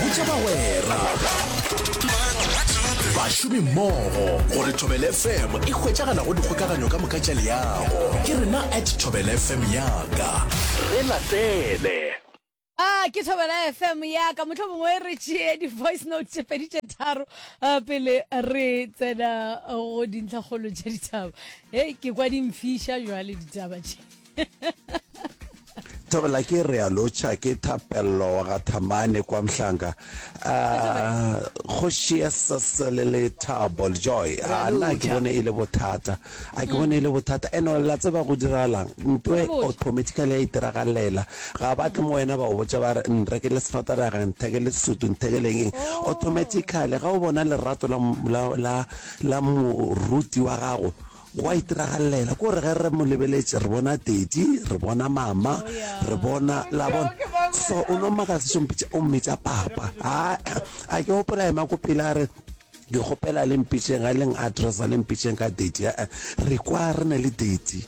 botša bagwera bašomi mmogo gore thobel fm e hwetšagala go dikgokaganyo ka moka tša leago ke rena at thobel fm yaka re latele a ke thobela fm yaka motlho mongwe re tšee di-voice note tše pedi tše tharo pele re tsena go dintlhakgolo tša ditaba e ke kwa dimfiša jwale ditaba tše Thabela ke re a lotšha ke thapello wa ga Thamane kwa Mhlanga ah, kgoši ya sesele le thabo joy a na ke bone e le bothata a ke bone e le bothata eno la tseba go diragalang nto e automatically ya itiragalela ga ba tle mo wena ba o botsa ba re nre ke le sefataraga ntheke le sutu ntheke leng eng oh. automatically ga o bona lerato la moruti wa gago Go a itiragalela, ke gore ge re mo lebeletše, re bona Teti, re bona Mama, re bona, la bona. So, o no mmakatsa tše o mpitša, o mmitša Papa. A, a ke gopola ema ko pele, a re, Ke kgopela le mpitšeng, a leng addressa, le mpitšeng ka Teti. A, re kwa re na le Teti.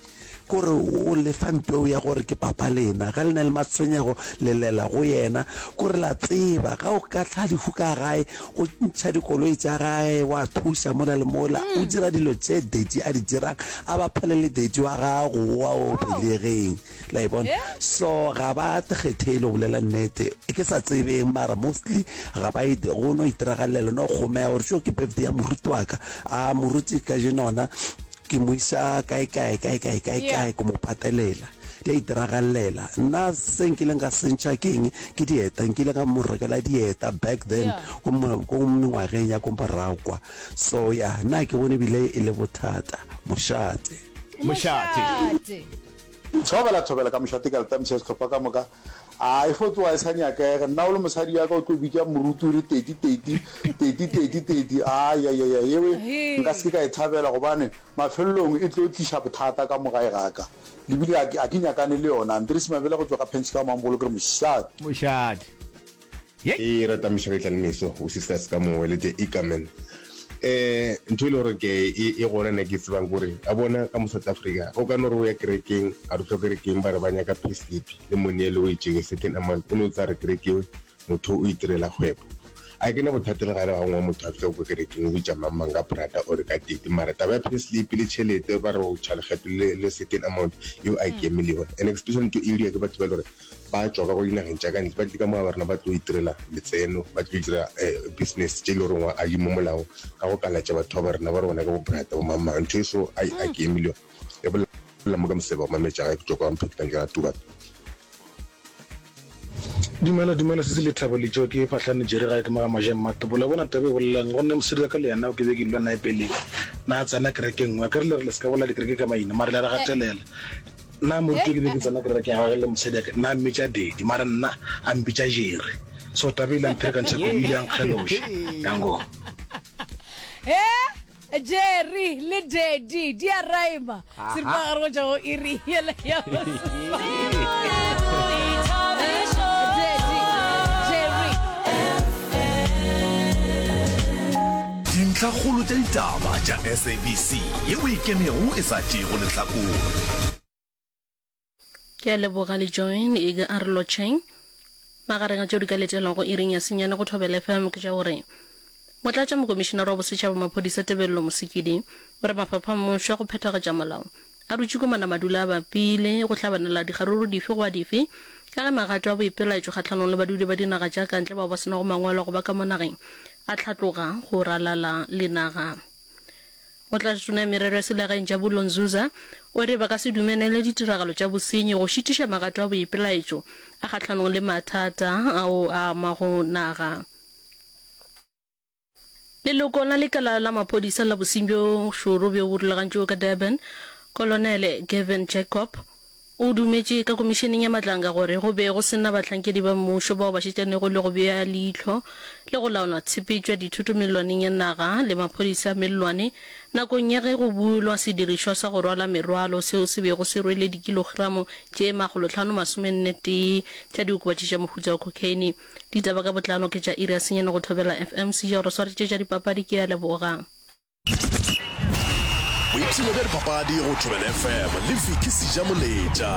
Ke gore o le fa mpeu ya gore ke Papa lena. Ge le na le matshwenyego, le lela go yena. Ke gore la tseba, ge o ka hlwa lehu ka gae, o ntšha dikoloi tsa gae wa thusa mola le mola o mm. dira dilo tse dadi a di dirang a ba phele le dadi wa gago wa o belegeng la e bona so ga ba kgethele go bolela nnete ke sa tsebeng mara mostly ga ba ete go no itiragalela no kgomea gore seo ke birthday ya moruti wa ka a moruti ka jenona ke mo isa kae kae kae kae kae kae ko mo patelela Di a itiragalela. Nna se nkileng ka sentšha ke eng? Ke dieta. Nkile ka mo rekela dieta back then ko mengwageng ya ko morago kwa. So ya, nna ga ke bone ebile e le bothata. Mošate. Mošate. Thobela thobela ka mošate ka leta mtšha sehlopha ka moka a e fo tsoa e sa nyakega nna o le mosadi ya ka o tlo bitša morutu re teti teti teti teti teti a ya ya ya yewe nka se ka e thabela gobane Mafelelong e tlo tliša bothata ka mo gae ga ka. Lebile ga ke, ga ke nyakane le yona. Andries Mabela go tšwa ga Penskau Mambolo ke re mošate. Mošate. Yey! Ke rata Moshabetla le Meso u sisters ka mowe le the Ikamen. Ehh ntho e le gore ke e e gona nna ke e tsebang kore a bona ka mo South Africa o ka no re o ya kerekeng a re o tlo kerekeng ba re ba nyaka payslip le money e le o e tšere certain amount o no tsa re kerekeng Motho o itirela kgwebo. A ke ne bothata le gare ga ngwe motho a fitlha ko kerekeng o bitša mang mang ka brata or ka tete mara taba ya pay slip le tšhelete ba re o tšha lekgetho le le certain amount yo a ke million and especially ke area ke batho ba e le gore ba tšwa ka ko dinageng tša ka ntle ba tle ka mo ga ba rena ba tlo itirela letseno ba tlo dira business tše e le gore ngwa a di mo molaong ka go kalatša batho ba ba rena ba re bona ke bo brata bo mang mang ntho e so a ke million. E bolela mo ka moseba o mametša ga e kutšwa kwa mpheti ka nkera tuba. Dumela dumela sisi lethabo letšo ke phahlane jere gae ke mo ga majeng matopo la bona taba e bolelang go nne mosadi wa ka le yena o ke be ke dula nae pele na a tsena kereke nngwe ka re le re le se ka bolela dikereke ka maina mare le re gatelela na moruti ke be ke tsena kereke ya gage le mosadi ake na mmitša dedi mare nna a mpitša jere so taba ile mphere ka ntšhako ile yang kgeloša yango Jerry le Daddy di a raima seripagare go tšwa go iri yela ya dintlhakgolo tša ditaba tša sabc ye o e kemego e sa tšego lehlakore Ke a leboga le join e ka arlo tšheng. Magareng a tšeo di ka letelwago iring ya senyane go Thobela FM ke tša gore Motlatša Mokomišinara wa Bosetšhaba Maphodisa Tebello Mosekedi o re mafapha a mmušo a go phethagatša molao a dutše ko manamadula a bapile go hlabanela dikgaruru dife goba dife ka ge magato a boipelaetšo kgahlanong le badudi ba dinaga tša kantle bao ba se nago mangwalo a go ba ka mo nageng a hlatloga go ralala le naga Motlatšatona ya Merero ya Selegaeng Jabulo Nzuza o re ba ka se dumelele ditiragalo tša bosenyi go šitiša magato a boipelaetšo a kgahlanong le mathata ao a amago naga. Leloko la lekala la maphodisa la bosenyi bjo šoro bjo bo rulagantšwego ka Durban, Kolonele Gavin Jacob, O dumetše ka Komišeneng ya Matlanga gore go be go se na bahlankedi ba mmušo bao ba šetšanego le go bea leihlo le go laola tshepetšo ya dithoto mellwaneng ya naga le maphodisa a mellwane nakong ya ge go bulwa sedirišwa sa go rwala merwalo seo se bego se rwele dikilogramo tše makgolotlhano masomenne tee tša diokobatši tša mohuta wa cocaine. Ditaba ka botlalo ke tša iri ya senyane go thobela FM. Sejoro swaretše tša dipapadi ke a leboga. boipshino bja dipapadi go tšobela fm le viki seja moletša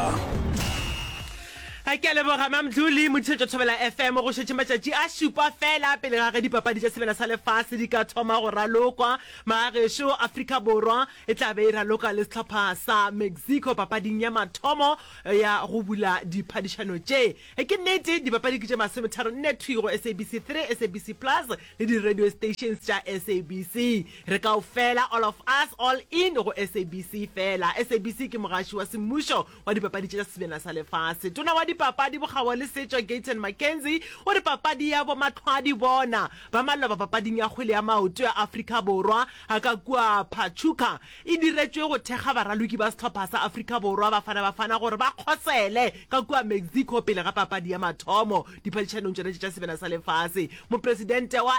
a ke a leboga mamdlo le mothišetšo thobela fm go šetše matšatši a šupa fela pele ga ge dipapadi tša sebela sa lefase di ka thoma go ralokwa magagešo afrika borwa e tla be e raloka le sehlopha sa mexico papading ya mathomo ya go bula diphadišano tše e ke nnete dipapadi ke tše masometharo nne thwigo sabc 3 sabc plus le di radio stations tša SABC re kaofela all of us all in go SABC fela SABC ke mogaši wa semmušo wa dipapadi tša sebjana sa lefase tona wa dipapadi bokgabo le setšo Gayton McKenzie o re papadi ya bo matlhwadi bona ba maloba papading ya kgwele ya maoto ya Afrika Borwa a ka kua Pachuca e diretšwe go thekga baraloki ba sehlopha sa Afrika Borwa Bafana Bafana gore ba kgosele ka kua Mexico pele ga papadi ya mathomo diphadišanong tšona tše tša sebela sa lefase mopresidente wa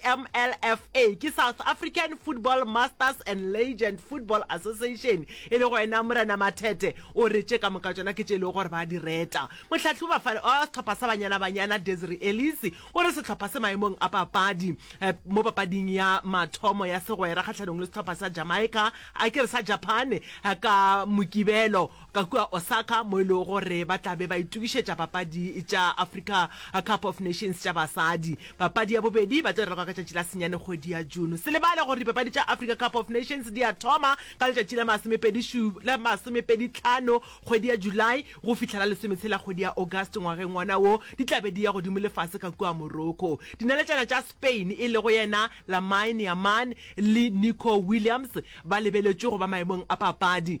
samlfa ke south african football masters and legend football association e le go ena morena mathete o re tše ka moka tšona ke tše e lego gore ba di reta mohlahloba fa wa setlhopha sa banyana banyana desri elise o re setlhopha se maemong a papadi eh, mo papading ya mathomo ya segwera kgatlhanong le setlhopha sa jamaica a ke re sa japan eh, ka mokibelo ka kua Osaka mo e lego gore ba tla be ba itokišetša papadi tša Africa Cup of Nations tša basadi. Papadi ya bobedi ba tlo e raloka ka tšatši la senyane kgwedi ya June. Se lebale gore dipapadi tša Africa Cup of Nations di a thoma ka letšatši la masomepedi la masomepedi tlhano kgwedi ya July go fihla la lesometshela kgwedi ya August ngwageng wona wo. Di tla be di ya godimo le fase ka kua Morocco. Dinaletšana tša Spain e lego yena Lamine Yamal le Nico Williams ba lebeletšwe go ba maemong a papadi.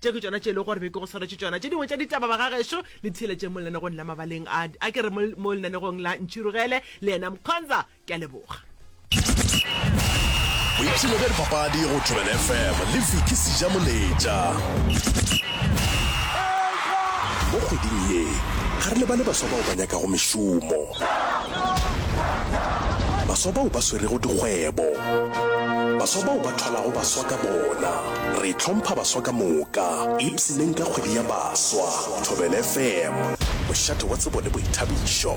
Tše ke tšona tše e lego gore be ke go swaretše tšona. Tše dingwe tša ditaba, bagagešo, le di theeletšeng mo lenanegong la Mabaleng a, a ke re mo, mo lenanegong la Ntšhirogele le yena Mkhonza. Ke a leboga. Boipshino bja dipapadi go Thobela FM le Vicky Sejamoletša. Mo kgweding ye, ga re lebale baswa bao ba nyakago mešomo, baswa bao ba swerego dikgwebo, baswa bao ba thwalago baswa ka bona. Re hlompha baswa ka moka, ipshineng ka kgwedi ya baswa. Thobel FM, mošate wa tsebo le boithabišo.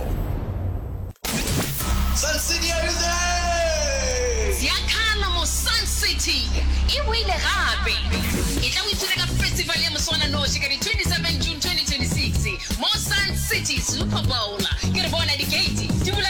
Sun City everything! Ziakhala mo Sun City e boile gape. E tla o ipshine ka festival ya moswananoši ka di 27 June 2026 mo Sun City Super Bowl. Ke re bona di gate di bula ka.